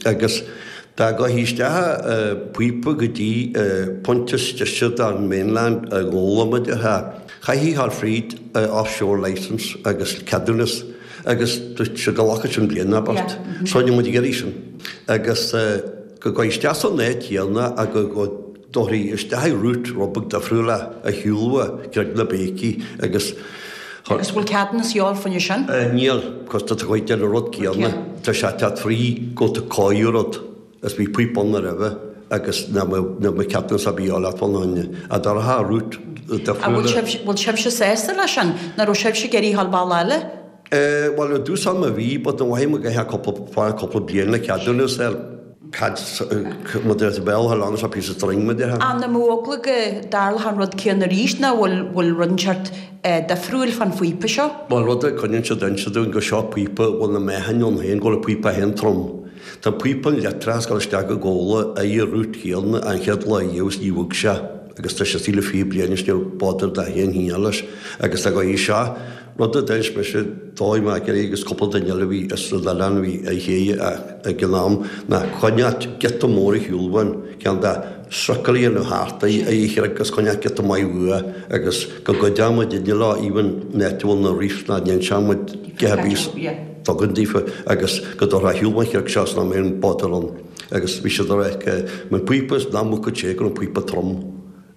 agus dá gcuirfí isteach an píopa go dtí pointe is deise don mainland ó Ghabhla de a chaithfí ghabháil fríd foreshore licence agus ceadúnas agus seo go nglacfadh sin bliain ab ort so ní raibh muid ag iarraidh sin agus go gcuirfí isteach san áit chéanna a go dtabharfaí isteach i route rud beag difriúil ar shiúl ó chreig na Béicí agus. Agus bhfuil ceadúnas a dhíobháil fá sin? Níl, 'cause tá tú ag déanamh an rud céanna. Tá sé cead fraoigh go tú cáidh rud, is bhí píopa ann roimhe agus ná níl mo ceadúnas a dhíobháil bhun ann. A dá raibh an route difriúla. Agus bhfuil sibhse sásta le sin? Nach raibh sibhse ag iarraidh ghabháil bealach eile? Bhuel, i dtús ama bhí, but an mhaith mo go hea cúpla, fá cúpla bliain le ceadúnas ar. Cad mar a deir tú i mBéarla how long is a piece of string mar a deir? An mbeadh eagla go dtarlódh an rud céanna arís nó bhfuil bhfuil rud inteacht eh difriúil fán phíopa seo? Bhuel rud a coinníonn siad ag inse dúinn go seo píopa a bhfuil an meáchan ann féin go bhfuil an píopa féin trom. Tá píopa an leictreach ag gabháil isteach go Gabhla ar an route céanna ón chéad lá riamh is níor bhog sé agus tá sé istigh le fiche bliain is níor bother dath aon hínear leis agus dá gá í seo Rud a d'inis mise dóibh, mé Gerry agus cúpla duine eile a bhí ar an oileán a bhí á thréigeadh ag an am, ná coinneáil giota mór ar shiúl ón cheann de thrucail a dhéanamh thart, ar an chreig agus coinneáil giota maith uaidh, agus go gcuideodh muidinne leo, even an áit a bhfuil na reefs go n-inseodh muid cé bith a dtugann daofa, agus go dtabharfaí ar shiúl ón chreag seo is nach mbeadh aon bother ann. Agus bhí siad ag rá, an píopa is ná muca téigh ar an bpíopa trom.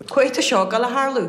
Coicís ó seo, gan a tharlú,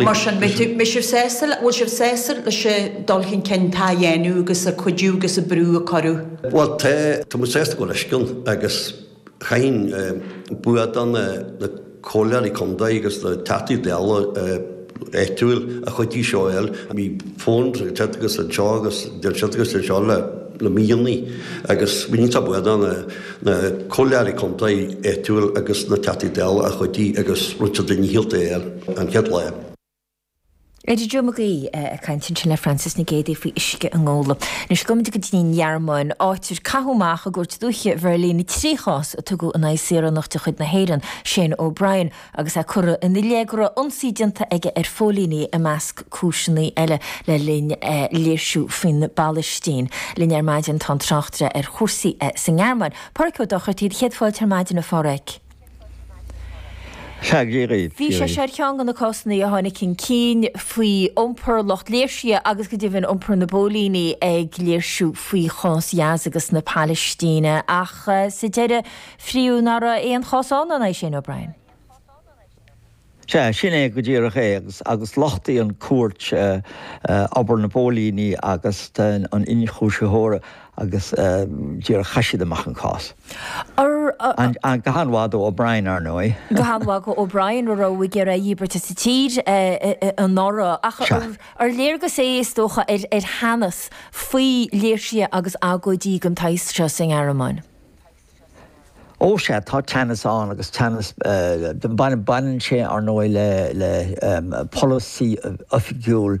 Mar sin, bhfuil sibh sásta leis an dul chun cinn atá á dhéanamh agus an cuidiú agus an brú a cuireadh? Bhuel, tá. Tá muid sásta go leor leis sin agus chaithfinn buíoch do na comhairleoirí contae agus na Teachtaí Dála áitiúil a chuidigh seo a fháil. Bhí fonn agus anseo agus anseo agus anseo le. na míonna agus muid iontach buíoch do na comhairleoirí contae áitiúil agus na Teachtaí Dála a chuidigh agus Richard Leahy Health Day ar an chéad lá. Eddie Joe Mag Aoidh ag caint ansin le Frances Nic Géadaigh faoi uisce i nGabhla. Anois gabhaimid go dtí an Ghearmáin, áit ar caitheadh amach i gcúirt dúiche Bheirlín trí chás a tugadh in aghaidh saoránach de chuid na hÉireann, Shane O'Brien, agus é curtha ina leith go raibh ionsaí déanta aige ar phóilíní, i measc cúiseanna eile, le linn léirsiú faoin bPalaistín. Linn ar maidin tá an tráchtaire ar chúrsaí sa nGearmáin, Pádraig Ó Dochartaigh, do chéad fáilte ar maidin a Phádraig. Bhí sé seo ar cheann de na cásanna a tháinig chun cinn faoi iompar lucht léirsithe agus go deimhin iompar na bpóilíní ag léirsiú faoi chás Ghaza agus na Palaistíne ach sa deireadh Fiú ná raibh aon chás ann, an é sin, O'Brien? Sea, sin é go díreach é, agus lochtaigh an chúirt obair na bpóilíní agus an ionchúisitheora agus díreach chaith siad amach an cás. Go han-mhaith do O'Brien, ar ndóigh. Go han-mhaith do O'Brien, arbh éigean a dhíbirt as an tír anuraidh, ach ar léargas é, is dócha, ar theannas faoi léirsithe agus agóidí den tsaghas seo sa nGearmáin? Ó, sea, tá teannas ann agus teannas, baineann sé, ar ndóigh, le polasaí oifigiúil.